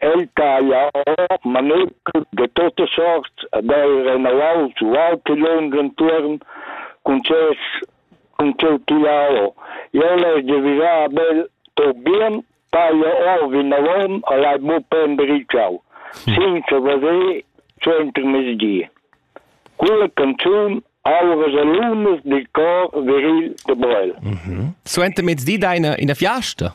El taglia ord manetschel de tote sorts ed ei renauaus ualtilung entuorn cun ses cun tscheu tigliau. Jeu l'hai devira bel Torbien taglia ord vinavon e l'hai buca embritschau, senza veder co intermezdi. Quella canzun auras e lunas dil cor viril de Brel. Mhm. Suenter mezdi da ina, ina fiasta?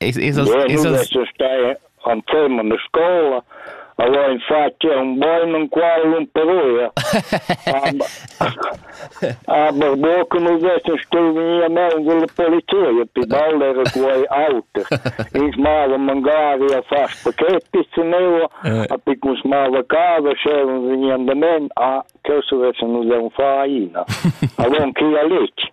Es es es es stai anzem in scola allora infatti è un buon un qual un peruia aber bo che nous essen stuvia mangi la polizia pi balle era quei auto ich mava magari a fas pachetti ceneo a picus mava casa sceven veni andament a che se vesse nous è un faina allora chi a lich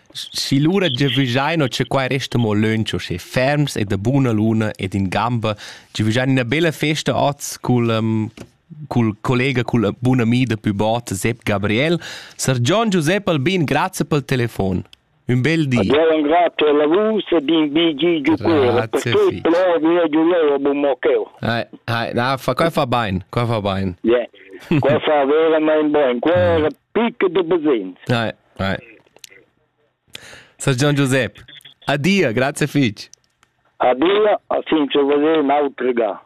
Si lura giavüschaino cha quai resta mo lönch uschè ferms e da buna luna ed in gamba, giavüschain üna bella festa hoz cul um, cul collega, cul bun ami da pü bot Sepp Gabriel. Sar Gian Giusepp Albin, grazie pel telefon. Un bel di. Adieu, grazie a voi e bin bigi giù per tutto lo mio giuleo bummoccheo. Hai, hai, na, fa, qua fa bain, qua fa bain. Yeah. qua fa veramente bene, qua è picco di besins. Sar Gian Giusep, adia, grazie fich. Adia, a sin ce vede un autre gars.